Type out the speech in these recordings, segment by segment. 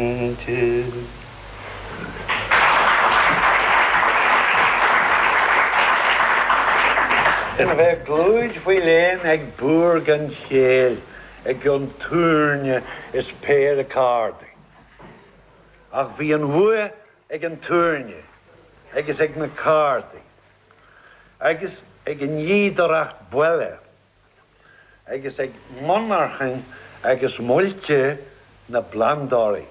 Aontaithe. Ná bheith i gclúid faoi léan ag búr gan chéill i gcionn túirne is péire cárdaí. Ach bhí an bhuaidh ag an túirne agus ag na cárdaí agus ag an fhíodóireacht baile agus ag monarchain agus muilte na bplandóirí.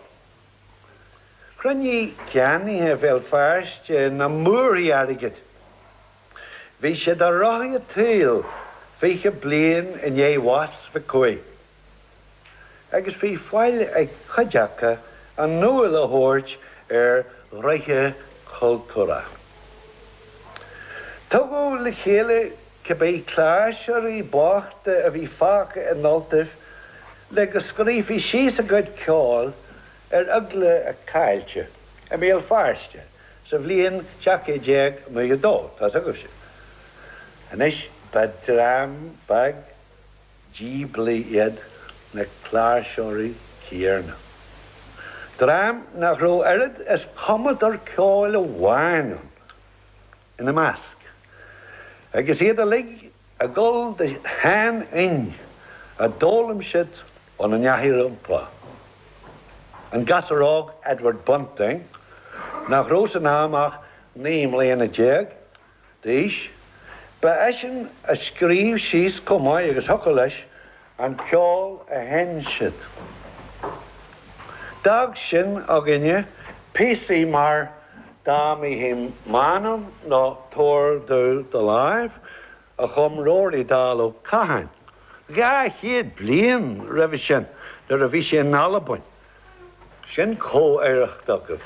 Chruinnigh ceannaithe Bhéal Feirste na múrthaí airgid. Bhí siad ar rothaí a' tsaoil fiche bliain i ndiaidh bhás Mhic Cumhaigh. agus bhí faill ag cuid aca a n-iúl a thabhairt ar ghnoithe cultúrtha. Tugadh le chéile cibé cláirseoirí bochta a bhí fágtha in Ultaibh le go scríofaí síos a gcuid ceoil ar eagla a caillte i mBéal Feirste sa bhliain 1792. Tá's agaibhse anois ba dream beag díblí iad na cláirseoirí céanna. Dream nach raibh oiread is cumadóir ceoil amháin ann ina measc, agus iad uilig ag gabháil de sheanfhoinn a d'fhoghlaim siad óna n-aithreacha rompu. An gasúr óg Edward Bunting, nach raibh san am ach naoi mbliana déag d'aois. Ba eisean a scríobh síos comh maith agus thiocfadh leis an ceol a sheinn siad. D'fhág sin againne píosaí mar Da Mihi Manum nó Tabhair Domh Do Láimh a chum Rory Dall Ó Catháin dhá chéad bliain roimhe sin nuair a bhí sé in Albain. Sin comh-oidhreacht agaibh.